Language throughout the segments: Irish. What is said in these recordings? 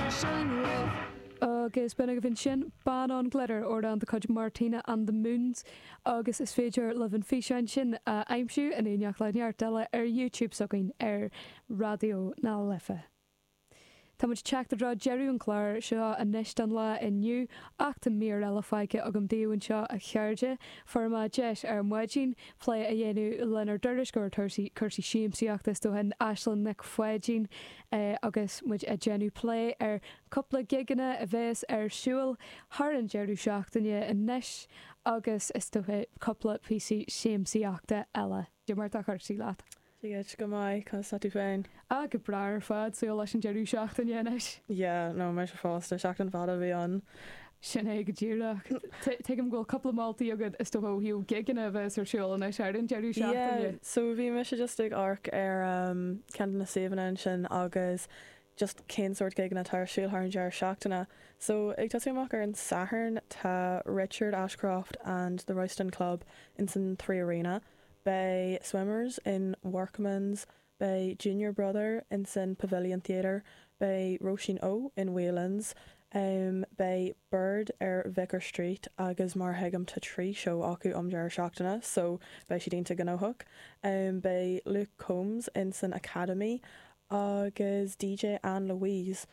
sin roimh. Agus b'in agaibh ansin Ban on Glitter, amhrán de chuid Martina and the Moons, agus is féidir libh an físeán sin a aimsiú, in éineacht le neart eile, ar YouTube s'againn ar Raidió na Life. Táimid ag teacht i dtreo deireadh an chláir seo anois don lá inniu, ach tá mír eile fágtha agam daoibh anseo, a chairde. Fuaireamar deis ar maidin plé a dhéanamh lenár dtuairisceoir cúrsaí siamsaíochta, is dócha, Aisling Nic Pháidín, Agus muid ag déanamh plé ar chúpla gigeanna a bhéas ar siúil thar an deireadh seachtaine anois agus is dócha cúpla píosaí siamsaíochta eile. Cad é mar atá cúrsaí leat? Dia duit, go maith, conas tá tú féin? Ah, go breá ar fad, súil leis an deireadh seachtaine anois. Yeah, no, mise fosta, seachtain fada a bhí ann. Sin é go díreach. Tuigim go bhfuil cúpla moltaí agat is dócha ó thaobh gigeanna a bheas ar siúl anois ar an deireadh seachtaine. Yeah, so bhí mise just ag amharc ar ceann de na suíomhanna ansin agus just cén sórt gigeanna atá ar siúl thar an deireadh seachtaine. So ag tosú amach ar an Satharn tá Richard Ashcroft and the Royston Club insan Three Arena, beidh Swimmers in Workman's, Beidh Junior Brother in san Pavilion Theatre, beidh Róisín O in Whelan's, beidh Biird ar Vicar Street agus mar a thuigim tá trí seó acu um deireadh seachtaine so beidh siad iontach gnóthach. Beidh Luke Combs in san Academy agus DJ Ann Louise.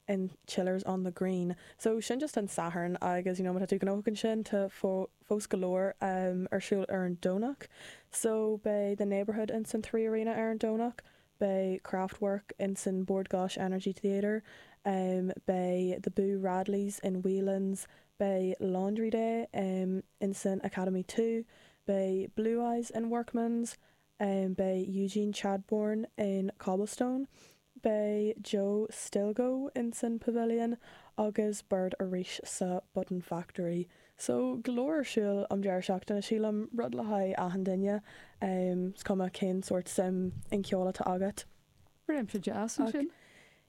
in Chillers on the Green so sin just an Satharn agus you know má tá tú gnóthach ansin tá fós go leor ar siúl ar an Domhnach so beidh the Neighbourhood in san three arena ar an Domhnach beidh Kraftwerk in san Bord Gáis Energy Theatre beidh the Boo Radleys in Whelan's beidh Laundry Day in san Academy two beidh Blue Eyes in Workman's Beidh Eugene Chadbourne in Cobblestone, beidh Joe Stilgoe ins an Pavilion agus Baird arís sa Button Factory. So, go leor ar siúl um deireadh seachtaine, sílim, rud le haghaidh achan duine, is cuma cén sórt suim in ceol atá agat. Réimse deas ansin. Ach,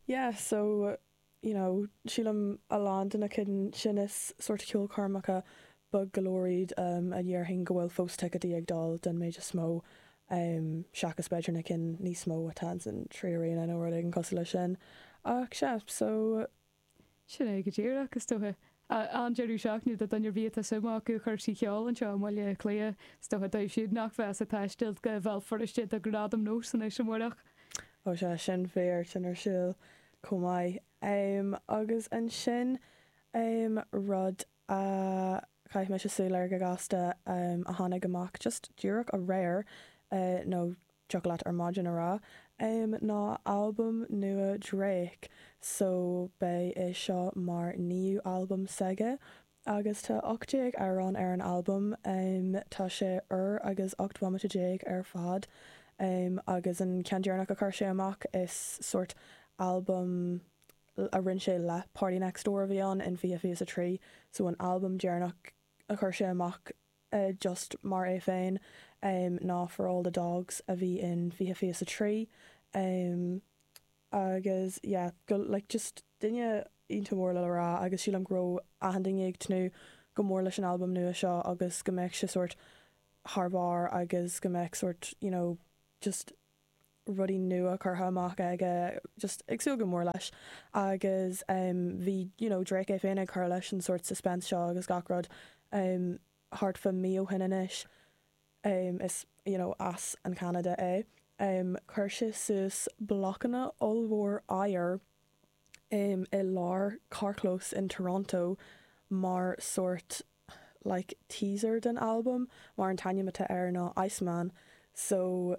yeah, so. you know, sílim a lán de na cinn sin is sórt ceolchoirmeacha beag go leor iad a déarfainn go bhfuil fós ticéadaí ag dul den méid is mó seachas b'fhéidir na cinn níos mó atá insan Three Arena nó rud éigin cosúil leis sin ach sea so. Sin é go díreach is dóiche. An-deireadh seachtaine do dhuine ar bith atá suim acu i gcúrsaí ceol anseo i mBaile Átha Cliath. Is dócha dóibh siúd nach bheas ag taisteal go Bhéal Feirste do Ghradaim NÓS anois amárach. Ó sea, sin fíor, tá sin ar siúl chomh maith. Agus ansin rud a chaith mise súil air go gasta a tháinig amach just díreach aréir nó Thiocfadh leat ar maidin a rá, em ná albam nua Drake so beidh é seo mar naoú albam s'aige agus tá ocht déag amhrán ar an albam, tá sé uair agus ocht mbomaite déag ar fad agus an ceann deireanach a chuir sé amach is sort albam a rinne sé le Party Next Door a bhí ann in 2023 so an albam deireanach a chuir sé amach just mar é féin ná For All the Dogs a bhí in 2023 agus yeah like just duine iontach mór le le rá agus sílim go raibh achan duine ag tnúth go mór leis an albam nua seo agus go mbeadh sé sórt thar barr agus go mbeadh sórt you know just rudaí nua curtha amach aige just ag súil go mór leis agus em bhí you know Drake é féin ag cur leis an sórt suspense seo agus gach rud em thart fá mí ó shin anois em is you know as an Ceanada é em chuir sé suas blocanna ollmhór oighir em i lár carrchlós in Toronto mar sórt like teaser den albam mar an t-ainm atá air ná Iceman so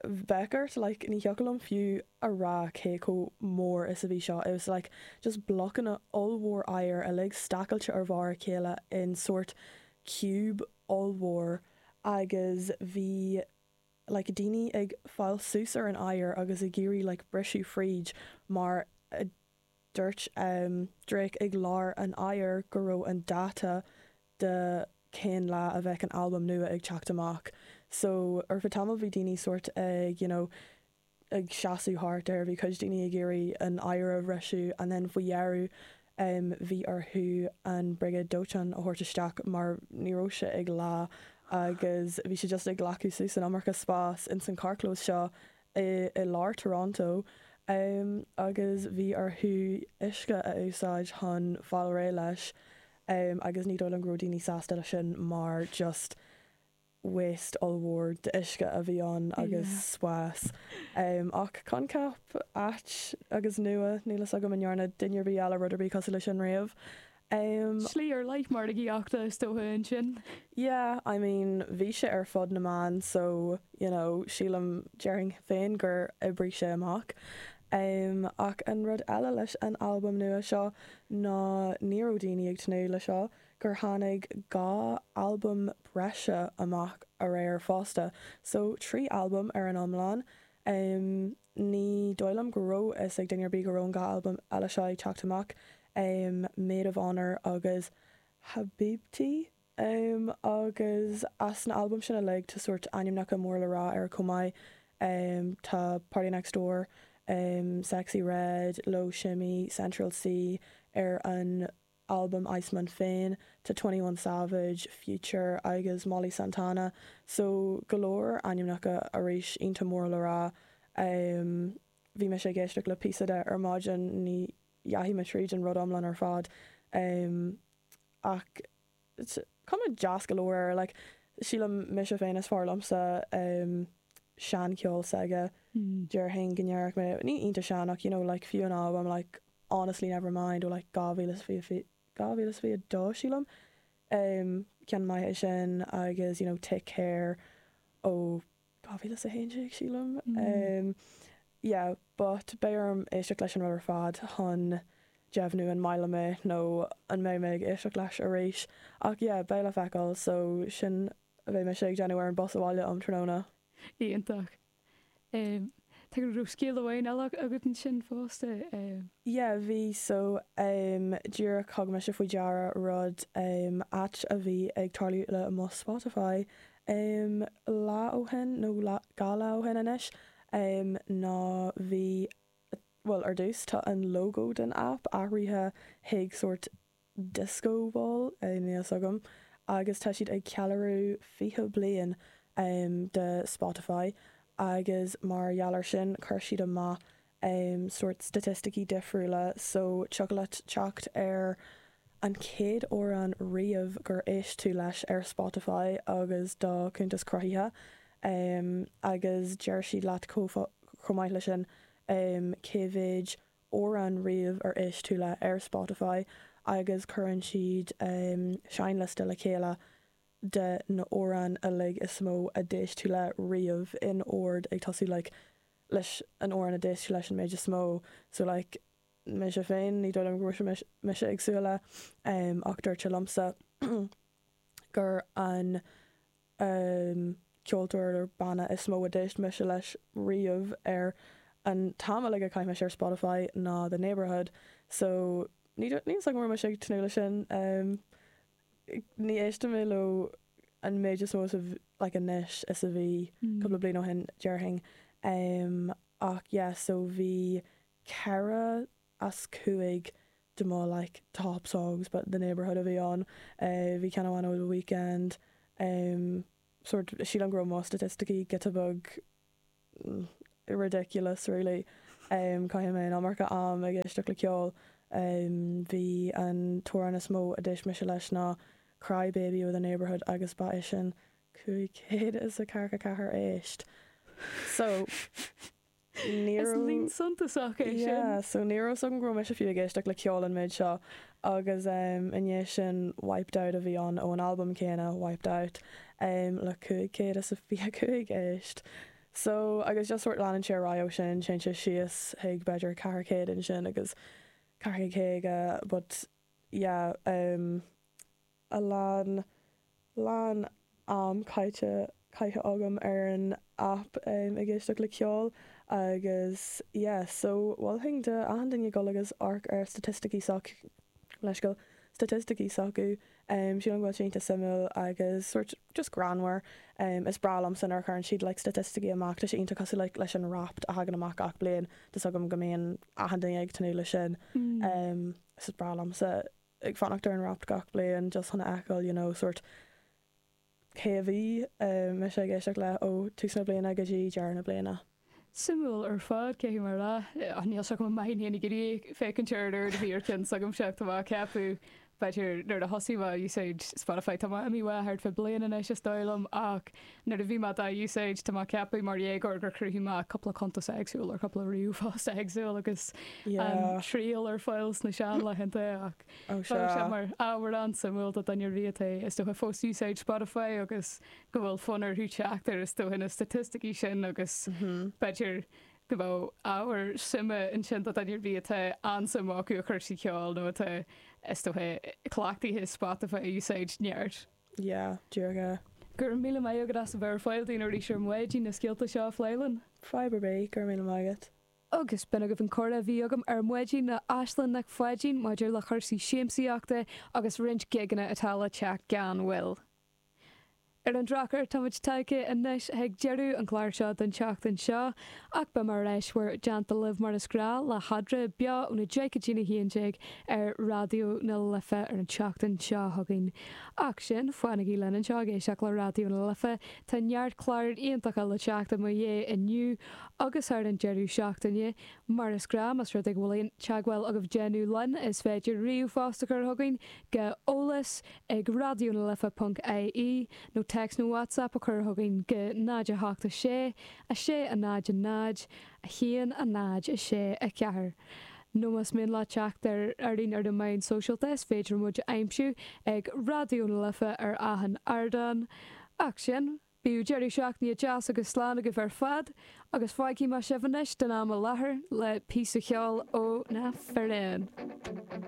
bheadh ort like ní thiocfadh liom fiú a rá cé chomh mór is a bhí seo it was like just blocanna ollmhór oighir uilig stacailte ar bharr a chéile in sort cube ollmhór agus bhí like daoine ag fáil suas ar an oighear agus ag iarraidh like briseadh fríd mar a Dúirt Drake ag lár an oighir go raibh an dáta de cén lá a bheadh an albam nua ag teacht amach so ar feadh tamaill bhí daoine sórt ag you know ag seasamh thart air, bhí cuid daoine ag iarraidh an oighear a bhriseadh and then faoi dheireadh bhí orthu an Briogáid Dóiteáin a thabhairt isteach mar ní raibh sé ag leá agus bhí sé just ag glacadh suas an iomarca spás in san carrchlós seo i lár Toronto agus bhí orthu uisce a úsáid chun fáil réidh leis agus ní dóigh liom go raibh daoine sásta leis sin mar just waste ollmhór d'uisce a bhí ann agus spás ach coincheap ait agus nua, níl fhios agam an ndearna duine ar bith eile rud ar bith cosúil leis sin riamh. Um. Slí ar leith margaíochta is dócha ansin. Yeah, I mean bhí sé ar fud na meán so, you know, sílim, déarfainn féin gur oibrigh sé amach. Um ach an rud eile leis an albam nua seo ná ní raibh daoine ag tnúth le seo, gur tháinig dhá albam breise amach aréir fosta, so trí albam ar an iomlán. Um. Ní dóigh liom go raibh fhios ag duine ar bith go raibh an dá albam eile seo ag teacht amach, Maid of Honour agus Habibti, agus as na albaim sin uilig tá sórt ainmneacha mór le rá air chomh maith, tá Party Next Door, Sexyy Red, Loe Shimmy, Central Cee ar an. albam Iceman féin, tá 21 Savage, Future agus Molly Santana, so go leor ainmneacha arís iontach mór le rá. Bhí mise ag éisteacht le píosa de ar maidin, ní dheachaigh mé tríd an rud iomlán ar fad ach is cuma deas go leor air like sílim mise féin is fearr liomsa um sean ceol s'aige déarfainn go ndéarfadh mé níl sé iontach sean ach you know like fiú an albam like Honestly, Nevermind ó like 2020 2022 sílim um ceann maith é sin agus you know Take Care ó 2011 sílim. Yeah but beidh orm éisteacht leis an rud ar fad chun deimhniú an maith liom é nó an mbeidh mé ag éisteacht leis arís ach yeah beidh le feiceáil so sin a bheidh mise ag déanamh ar an bus abhaile um tráthnóna. Iontach. An raibh scéal amháin eile agat ansin fosta? Yeah bhí so díreach thug mise faoi deara rud áit a bhí ag tarlú le mo Spotify. Um lá ó shin, nó lá, dhá lá ó shin anois, um ná bhí, bhuel, ar dtús, tá an logo den aip athraithe chuig sórt disco ball, eh, níl fhios agam, agus tá siad ag ceiliúradh fiche bliain, um de Spotify agus mar gheall ar sin chuir siad amach, sórt staitisticí difriúla so tiocfadh leat teacht ar an chéad amhrán riamh ar éist tú leis ar Spotify agus do chuntas cruthaithe agus deir siad leat chomh maith leis sin cé mhéid amhrán riamh ar éist tú leo ar Spotify agus cuireann siad seinnliosta le chéile de na amhráin uilig is mó a d'éist tú leo riamh in ord ag tosú like leis an amhrán a d'éist tú leis an méid is mó so like mise féin, ní dóigh liom go raibh mise ag súil le, ach dúirt sé liomsa gurb é an ceoltóir, banna is mó a d'éist mise leis riamh ar an t-am uilig a chaith mise ar Spotify ná The Neighbourhood so ní dóigh liomsa go raibh mise ag tnúth leis sin. ní éisteann mé leo an méid is mó is a bh, like anois is a bhí cúpla bliain ó shin déarfainn em ach yeah so bhí ceithre as cúig de mo like top songs ba The Neighbourhood a bhí ann eh bhí ceann amháin ó The Weeknd em sórt sílim go raibh mo staitisticí giota beag ridiculous really Caith mé an iomarca am ag éisteacht le ceol Bhí an t-amhrán is mó a d'éist mise leis ná Cry Baby by The Neighbourhood agus ba é sin cúig chéad is a ceathracha ceathair éist So ní raibh yeah so ní raibh 's agam go raibh mise fiú ag éisteacht le ceol an méid seo agus i ndiaidh sin Wiped Out a bhí ann ón albam céanna, Wiped Out, le cúig chéad is a fiche cúig éist. So, agus just sórt leanann sé ar aghaidh ó sin, téann sé síos chuig b'fhéidir ceithre chéad ansin agus ceithre chéad a but yeah. a lán, lán am caite, caite agam ar an aip ag éisteacht le ceol agus yeah so mholfainn do achan duine dul agus amharc ar staitisticí, gabh mo leithscéal, staitisticí s'acu, sílim go bhfuil sé iontach suimiúil agus sórt just greannmhar, is breá liomsa nuair a chuireann siad like staitisticí amach, tá sé iontach cosúil like leis an Wrapped a thagann amach gach bliain, tá 's agam go mbíonn achan duine ag tnúth le sin, so is breá liomsa. ag fanacht ar an Wrapped gach bliain just chun a fheiceáil you know sort cé a bhí mise ag éisteacht le ó tús na bliana go dtí deireadh na bliana. Suimiúil ar fad cé tú mar a rá. Ach níl sé chomh maith in éineacht a bheith ag féachaint ar an oiread a bhí ar cheann s'agam seo. Tá mé ag ceapadh b'fhéidir nuair a thosaigh mé ag úsáid Spotify tá mé imithe uaidh thart faoi bliain anois is dóigh liom ach Nuair a bhí mé dá úsáid, tá mé ag ceapadh mar dhéagóir gur chruthaigh mé cupla cuntas éagsúil ar cupla ríomhphost éagsúil agus an Yeah. triail ar fáil sna seanlaethanta ach Ó tá sé sé. mar ábhar an-suimiúil do dhuine ar bith atá is dócha fós ag úsáid Spotify agus go bhfuil fonn orthu teacht ar is dócha na staitisticí sin agus b'fhéidir go bhfuil ábhar suime ansin do dhuine ar bith atá an-suim acu i gcúrsaí ceoil nó atá is dócha cleachtaithe Spotify a úsáid neart. yeah díreach é. Go raibh míle maith agat as a bheith ar fáil dúinn arís ar maidin na scéalta seo a phlé linn. Fadhb ar bith, go raibh míle maith agat. Agus b'in agaibh an comhrá a bhí agam ar maidin le Aislinn Nic Pháidín maidir le chúrsaí siamsaíochta agus roinnt gigeanna atá le teacht gan mhoill. Ar an drochuair, táimid tagtha anois chuig deireadh an chláir seo don tseachtain seo. Ach beidh muid ar ais in bhur dteannta libh mar is gnáth le heagrán beo óna deich go dtí a haon déag ar Raidió na Life ar an tseachtain seo chugainn. Ach sin, fanaigí linn anseo ag éisteacht le Raidió na Life, tá neart cláir iontacha le teacht i mo dhiaidh inniu agus thar an deireadh seachtaine. Mar is gnáth, más rud é go bhfuil aon teagmháil agaibh le déanamh linn, is féidir ríomhphost a chur chugainn go eolas ag raidionalife.ie nó text nó WhatsApp a chur chugainn go 0 8 6 6, 0, 0, 1, 0, 6, 4, nó más mian libh teacht orainn ar na meáin sóisialta is féidir muid a aimsiú ag Raidió na Life ar achan ardán. Ach sin, bíodh deireadh seachtaine deas agus slán agaibh ar fad agus fágfaidh mé sibh anois don am i láthair le píosa ceoil ó na firéin.